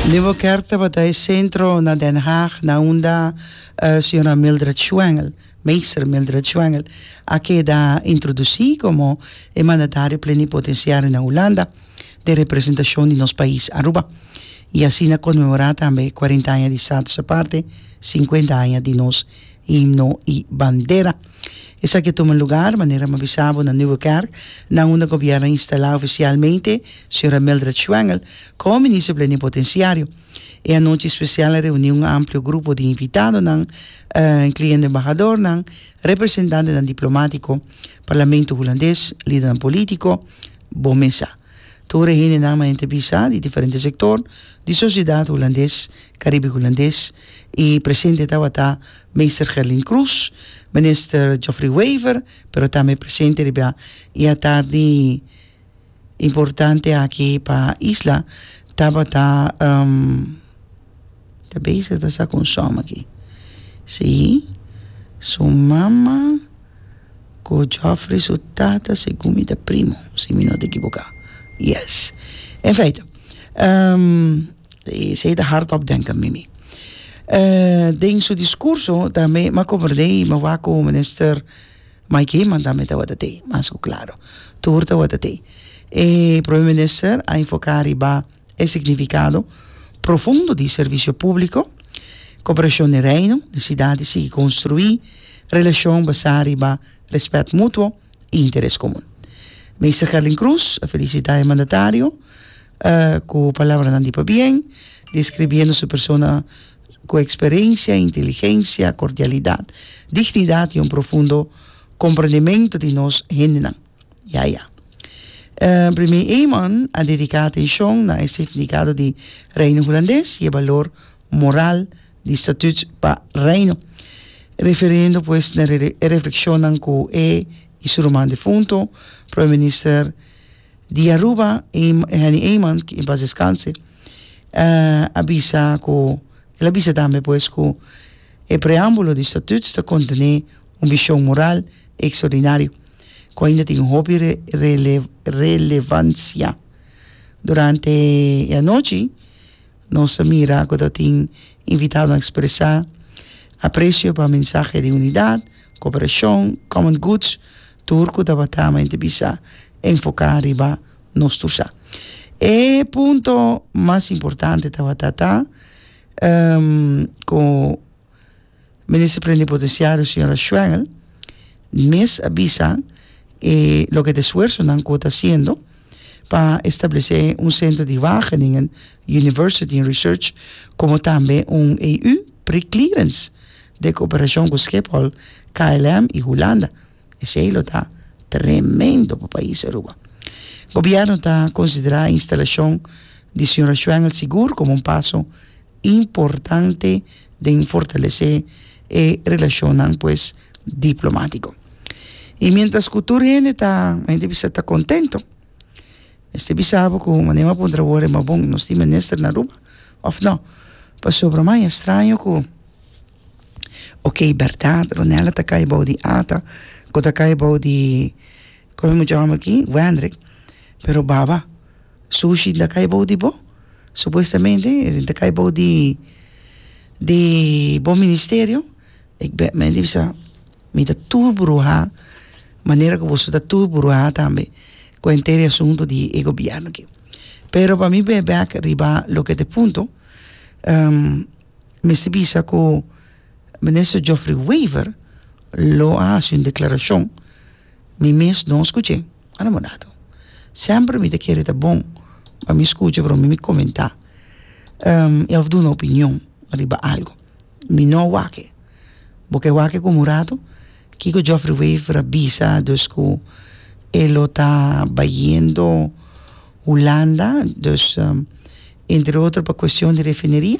Nuevo Kerk tabata e sentro na Den Haag na unda Sra. Mildred Schwengel, Meester Mildred Schwengel, a keda introdusí komo e mandatario plenipotensiario na Hulanda den representashon di nos pais Aruba i asina konmemorá tambe e kuarenta aña di Status Aparte, sinkuenta aña di nos Himno i Bandera. Esaki a tuma lugar, manera mi a bisa bo, na Nieuwe Kerk, na unda Gobièrnu a instalá ofisialmente señora Mildred Schwengel komo Minister Plenipotensiario. E anochi spesial a reuní un amplio grupo di invitadonan, inkluendo embahadornan, representantenan diplomátiko, Parlamento Hulandes, lidernan polítiko. Bon mesa. Tur e hende nan mainta bisa di diferente sektor di sosiedat Hulandes, Karibi Hulandes i presente tabata Meester Gerlin Croes, Minister Geoffrey Wever pero tambe presente riba e atardi importante aki pa isla tabata ta bezig ta sa con som aki si su mama. Cu Geoffrey su tata segun mi ta primo si mi no ta ekiboka yes en feite esey ta hard op denka mimi den su discurso tambe mi a comorde y mi wak cu minister Mike Eman tambe tabata tey mas cu claro tur tabata tey e prome minister a enfoca riba E signifikado profundo di servisio públiko, koperashon den Reino, nesidat di sigui konstruí relashon basá riba rèspèt mutuo i interes komun. Meester Gerlin Cruz a felisitá e mandatario ku palabranan di pabien, deskribiendo su persona ku eksperensia, inteligensia, kordialidat, dignidat i un profundo komprendementu di nos hendenan. Ya ya. Primé Eman a dediká atenshon na e signifikado di Reino Hulandes i e balor moral di Statuut pa Reino, referiendo pues na e reflekshonnan ku e i su ruman difunto, Prome Minister di Aruba, Henny Eman, ki en pas deskanse, a bisa ku, el a bisa tambe pues ku e preámbulo di Statuut ta kontené un vishon moral ekstraordinario. ku ainda tin hopi relevansia. Durante e anochi nos a mira ku ta tin invitadonan a ekspresá apresio pa mensahe di unidat, koperashon, common goods, tur ku tabata mente bisa enfoká riba nos tur sa. E punto mas importante tabata ta ku. Minister Plenipotenciario Señora Schwengel mes a bisa e loke ta esfuersonan cu ta haciendo pa establece un centro di Wageningen University and Research como tambe un EU pre-clearance den cooperacion cu Schiphol, KLM y Hulanda. Esey lo ta tremendo pa pais Aruba. Gobierno ta considera e instalacion di Señora Schwengel sigur como un paso importante den fortalesé e relashonnan pues diplomátiko. I miéntras ku tur hende ta hende bisa ta kontento. Mester bisa bo ku manera bo puntra wòrdu ma bon nos tin minister na Aruba òf nò? Pasobra mai estraño ku ok bèrdat Ronela ta kai bou di Ata ku ta kai bou di kòrda mucha hòmber aki Wendrick pero baba Sushi la kai bou di bo? Supuestamente e ta kai bou di di bo ministerio ik bèt mei di bisa mi ta tur buruha manera ku boso ta tur buruha tambe ku enter e asuntu di e gobièrnu aki pero pa mi bay back riba loke ta e punto mester bisa ku minister Geoffrey Wever lo a hasi un deklarashon mi mes no a skuch'é. Ora mi mudá tu semper mi ta kere ta bon pa mi skucha pero mi mi komentá i òf duna opinion riba algu mi no a wak bo ke wak ku mudá tu kiko Jofri Wever a bisa dus ku e lo ta bayendo Hulanda dus entre otro pa kuestion di refineria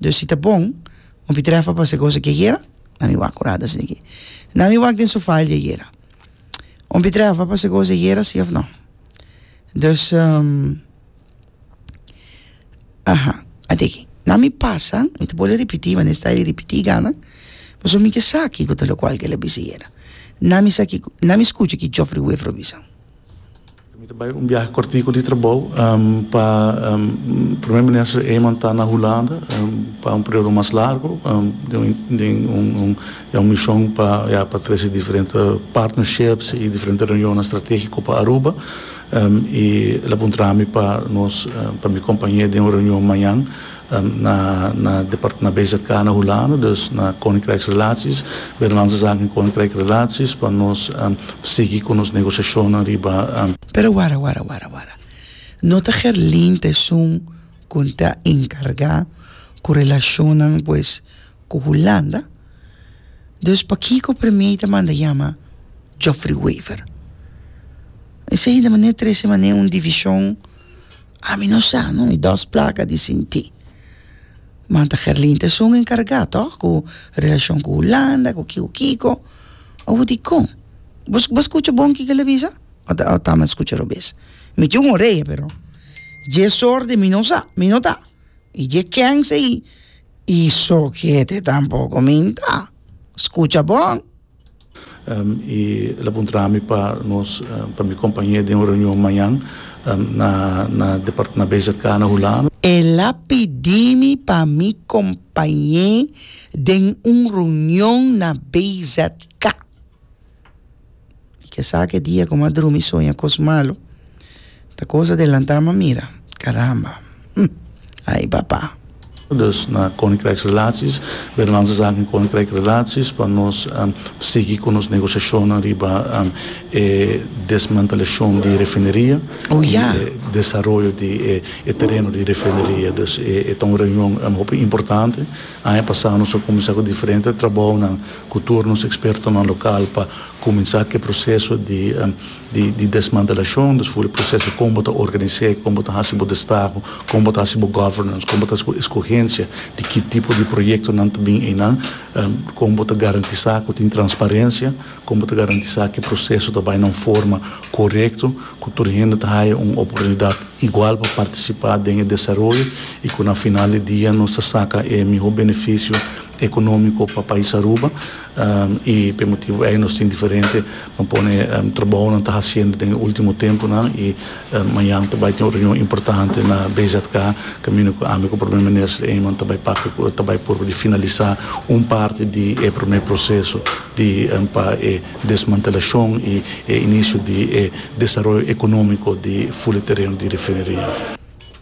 Dor si ta bon, un pitrefa pa se cosa ki ayera, na mi wak curada asina ki. Na mi wak den su file di ayera. Un pitrefa pa se cosa ayera, si of no. Dus, um, aha, ate aki. Na mi pasa, mi ta bole ripiti, ma den style di ripiti gana, paso mi ke sa kiko ta lokual ke el a bisa ayera. Na mi sa kiko, na mi skucha ki Geoffrey Waverill a bisa. Mi ta bai un biahe kortiku di trabou pa Primer Minister Eman ta na Hulanda pa un periodo mas largu den un ya un mishon pa ya pa trese diferente partnerships y diferente reunionnan strategiko pa Aruba y el a puntra mi pa nos pa mi acompañ'é den un reunion mañan. Na na depart na BZK na Hulanda dus na Koninkrijksrelaties Binnenlandse Zaken en Koninkrijk Relaties pa nos sigui ku nos negosiashonnan riba. Pero wara wara wara wara no ta Gerlint esun ku ta enkargá ku relashonnan pues ku Hulanda dus pakiko Premiei ta manda yama Geoffrey Wever esei ta manera trese manera un divishon Ami no sa no mi dos plaka di sinti man ta Gerlinte esun enkarga to ku relashon ku hulanda ku kiko kiko o dikon bo bo skucha bon kiko la bisa o ta o ta mi skucha robes mi tin un oreya pero dje sorte mi no sa mi no ta i dje kèns ei i sokete tampoko mi ta skucha bon. i el a puntra mi pa nos pa mi kompañe den un reunion mañan na na na BZK na hulano. El a pidi mi pa mi kompañe den un reunion na BZK i ke esaki e dia ku mi a drumi soña kos malu. Ta cosa de lanta ma mira. Caramba! Hm! Ay papa! Dus na Koninkrijksrelaties, Binnenlandse Zaken en Koninkrijkrelaties, pa nos sigui ku nos negosiashonnan riba e desmantelashon di refineria i e desaroyo di e tereno di refineria. Dus e ta un reunion hopi importante. Aña pasá nos a kuminsá ku diferente trabounan ku tur nos ekspertonan lokal pa kuminsá ku e proseso di di desmantelacion, dus for di proceso con bo ta organise, con bo ta haci bo destaho, con bo ta haci bo governance, con bo ta haci bo escogencia di ki tipo di proyectonan ta bin eynan, con bo ta garantisa cu tin transparencia, con bo ta garantisa cu e proceso ta bay na un forma corecto, cu tur hende ta haya un oportunidad igual pa participa den e desaroyo y cu na final di dia nos ta saca e miho beneficio economico pa pais Aruba. I pa e motibu ei nos tin diferente no pone trabounan ta hasiendo den e ultimo tempunan i mañan ta bai tin un reunion importante na BZK kaminda ku ami ku Prome Minister Eman ta bai papia ku el ta bai purba di finalisa un parti di e prome proseso di pa e desmantelashon i e inisio di e desaroyo ekonómiko di Fuli Tereno di Refineria.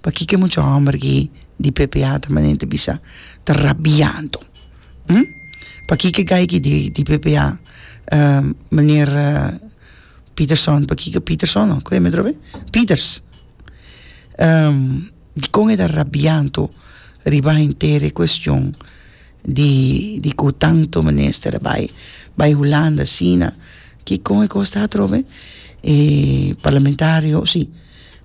pakiko e mucha homber aki di ppa ta manera ta bisa ta rabiando hmm pakiko e guy aki di ppa meneer Peterson pakiko Peterson no ku e atrobe e Peters dikon e ta rabiando riba henter e cuestion di di ku tanto minister a bai bai Hulanda asina kikon e kos ta atrobe e parlamentario si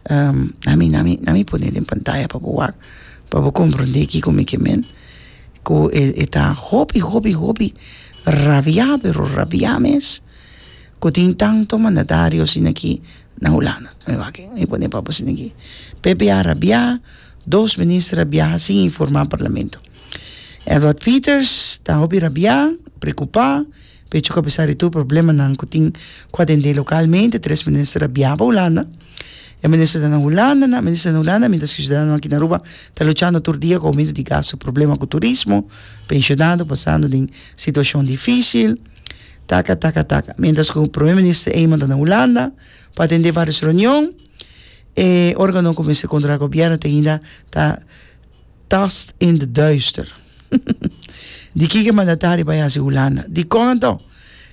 na mi na mi na mi pone den pantaya pa bo wak pa bo komprondé kiko mi ke men ku e e ta hopi hopi hopi rabiá pero rabiá mes ku tin tanto mandatario asina ki na hulanda na mi wak mi pone pa bo asina ki pepe a rabiá dos minister a biaha sin informá parlamento Edward Peters ta hopi rabiá preokupá Pecho cu apesar di tur problemanan cu tin cu atende localmente, tres minister a bia pa Hulanda. E minister ta na Hulanda, nan minister ta na Hulanda, mientras cu e ciudadanonan aki na Aruba ta luchando tur dia cu aumento di gasto, problema cu turismo, pensionado pasando den situacion dificil, taca, taca, taca. Mientras cu Prome Minister Eman ta na Hulanda pa atende varios reunion, e organonan cu mester controla gobierno ta ainda ta Tossed in the duister. Di kiko e mandatario a bai hasi Hulanda? Dikon anto?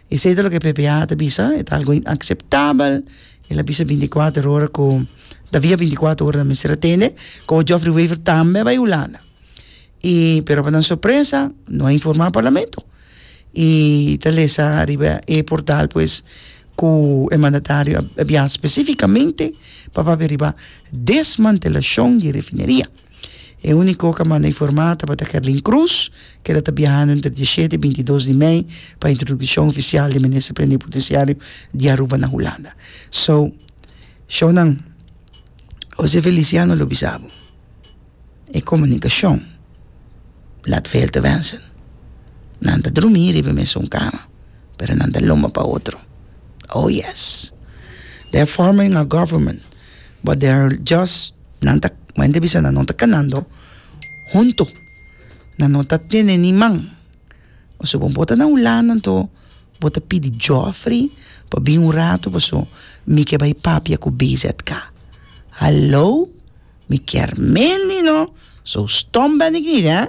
Esei ta loke PPA ta bisa, e ta algo inakseptabel. El a bisa binticuater ora ku tabia binticuater ora nan mester a tende. Komo Geoffrey Wever tambe a bai Hulanda. I, pero pa nan sorpresa no a informá Parlamento. y ta lesa ariba e portal pues cu e mandatario a bia specificamente pa papia riba desmantelacion di e refineria. E unico cu a manda informa tabata Kerlin Croes, keda ta biahando entre di e shete y binti dos di mei pa introduccion oficial di Minister Plenipoteciario di Aruba na Hulanda. So, shownan, Jose Feliciano lo bisa bo. e komunikashon laat veel te wensen. Nan ta drumi riba e mesun kama, pero nan ta lomba pa otro. Oh yes! They are forming a government but they are just, nan ta, como hende bisa, nan no ta kanando huntu. Nan no ta tene ni man. Pasobra bo bo ta na Hulanda anto bo ta pidi Geoffrey pa bin un rato pasobra mi ke bai papia ku BZK. Hallo! Mi kier mendi no, so stomp benignida.